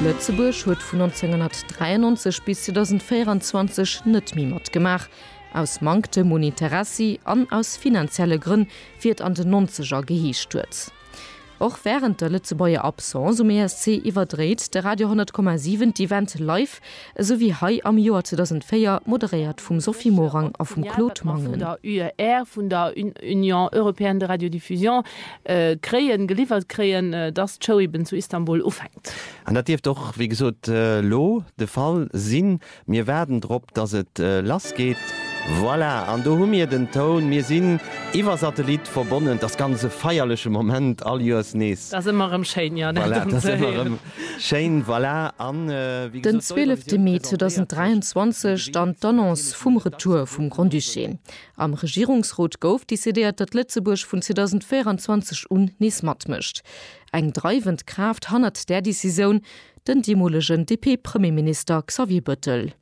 Lëtzebuerg huet vun 1993 bis 2024 net méi matgemaach, aus Manktem un Interessi an aus finanzielle Grënn, wéi et an den Nonzeger geheescht huet. Och wärend der Lëtzebuerger Absence um ESC iwwerdréit de Radio 100,7 d'Event live esou wéi hei am Joer 2004, moderéiert vum Sophie Morang a vum Claude Mangen. D'Interviewen mat Animateuren, déi vun der UER, vun der Union Européenne de Radiodiffusion, kréien, geliwwert kréien, dass d'Show eben zu Istanbul ufänkt. An dat dierft och, wéi gesot, elo de Fall sinn. Mir waarden drop, dass et lass geet. Voilà, an do hu mir den Toun. Mir sinn iwwer Satellit verbonnen. T'ass ganz e feierleche Moment, all Joers nees. T'ass ëmmer erëm schéin, jo, dat erëm ze héieren. Schéin, voilà, an wéi Den gesot, d'Euro 12 Mee 2023, dann d'Annonce vum Retour vum Grand-Duché. Am Regierungsrot gouf decidéiert, datt Lëtzebuerg vun 2024 un nees matmécht. Eng dreiwend Kraaft hannert där Decisioun, den deemolegen DP-Premierminister Xavier Bëttel.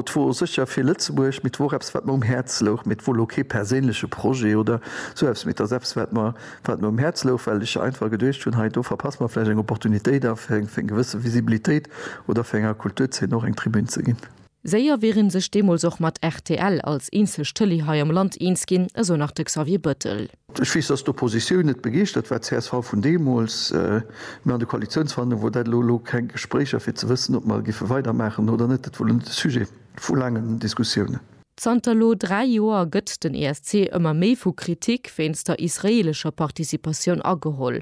't wor secher fir Lëtzebuerg, mee 't wor och eppes wat mer um Häerz louch, mee 't wor lo kee perséinleche Projet oder sou eppes, mee 't ass eppes wat mer wat mer um Häerz louch, well ech einfach geduecht hunn, hei do verpasse mer vläicht eng Opportunitéit a fir eng fir eng gewësse Visibilitéit oder fir enger Kulturzeen och eng Tribün ze ginn. Séier wier ee sech deemools och mat rtl als eenzeg Tëlee hei am Land eens ginn, esou nach de Xavier Bettel. Ech weess, dass d'Oppositioun net begeeschtert war, csv vun deemools, mä an de Koalitionsverhandlunge wor dat elo, elo keng Gespréicher, fir ze wëssen, ob mer géife weidermaachen oder net. Dat wor elo net de Sujet vu laangen Diskussiounen. Zanter elo dräi Joer gëtt den ESC ëmmer méi vu Kritik wéinst der israeelescher Participatioun ageholl.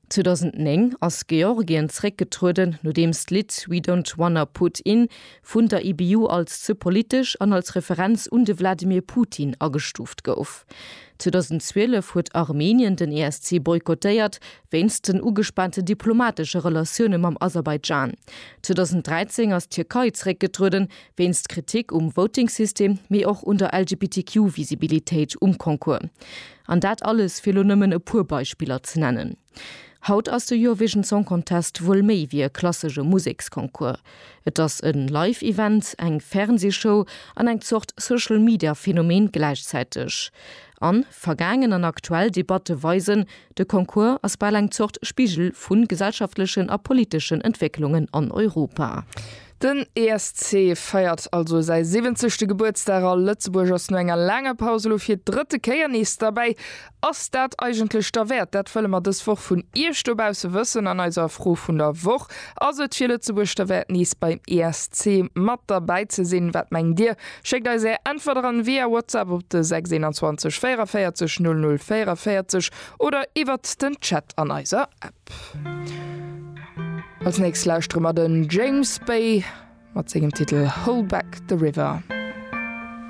2009 ass Georgien zréckgetrueden, nodeems d'Lidd We Don't Wanna Put In vun der IBU als ze politesch an als Referenz un de Wladimir Putin agestuuft gouf. 2012 huet Armenien den ESC boykottéiert, wéinst den ugespaante diplomatesche Relatioune mam Aserbaidschan. 2013 ass d'Tierkei zréckgetrueden, wéinst Kritik um Voting-System, mee och un der LGBTQ-Visibilitéit um Concours. An dat alles, fir elo nëmmen e puer Beispiller ze nennen. Haut ass de Eurovision Song Contest wuel méi wéi e klassesche Museksconcours. Et ass e Live-Event, eng Fernsee-Show an eng Zort Social-Media-Phänomen gläichzäiteg. An vergaangen an aktuell Debatte weisen, de Concours ass bal eng Zort Spigel vu gesellschaftlechen a politeschen Entwécklungen an Europa. Den ESC feiert also säi 70. Gebuertsdag a Lëtzebuerg ass no enger laanger Paus elo fir d'drëtte Kéier nees derbäi. Ass dat eigentlech derwäert? Dat wëlle mer dës Woch vun Iech dobausse wëssen an eiser Fro vun der Woch. Ass et fir Lëtzebuerg derwäert nees beim ESC mat derbäi ze sinn? Wat mengt Dir? Schéckt eis Är Äntwerter an via Whatsapp op de 621 44 00 44 oder iwwert den Chat an eiser App. Als nächst lauschtere mer den James Bay mat sengem Titel Hold Back the River.